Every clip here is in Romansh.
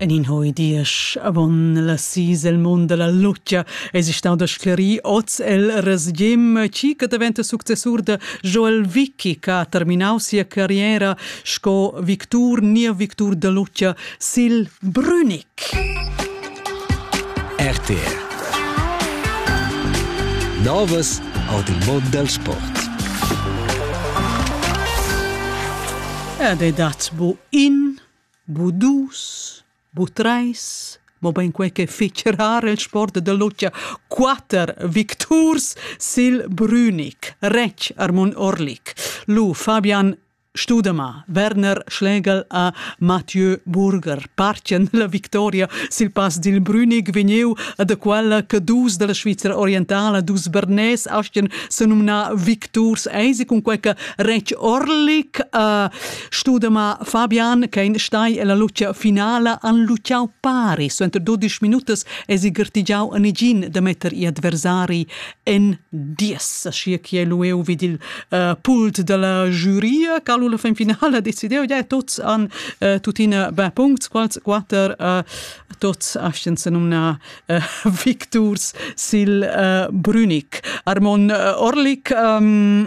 En in hoi diesch avon la sis el mund dalla lutgia eis stau da sclerir oz el Resgim, chi che daventa successur da Joel Vicky che ha terminau sia carriera sco victur ni victur da lutgia sil Brünig. RTR Novas ord il mod dal sport. Ed è dat bu in, bu dus, bu treis, mo ben quei che fece rar il sport de Luccia, quater victurs sil Brünig, rec Armun Orlik, lu Fabian Studemar Werner Schlegel a Mathieu Burger partien la victoria sil pass dil Brünig vegniu a da quella che dus dalla Svizzera orientala, dus bernés astien senumnar victurs eisi cun quei che retg Orlik a studemar Fabian che in stai ella lucia finala han luciau pari suenter 12 minutas esi gertigiau a negin da metter gli adversari en dies, aschia che lu eu vid il uh, pult dalla giuria, cal la fin finala decideu, ja, tots han uh, tuttina beh puncts, quals quater uh, tots astan se nomna uh, victurs sil uh, Brünig. Armon uh, Orlik, um,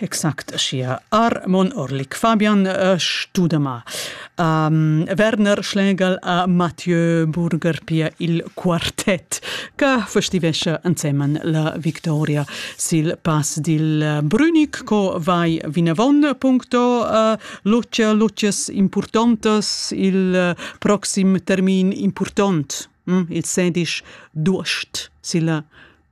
Exact aschia. Armon Orlik, Fabian Studema, Werner Schlegel a Mathieu Burger, pia il quartet che festivescha ensemen la victoria sil pass dil Brünig, co vai vinavon puncto Lucia, Lucias impurtontas il proxim termin impurtont, il sedisch d'uost silla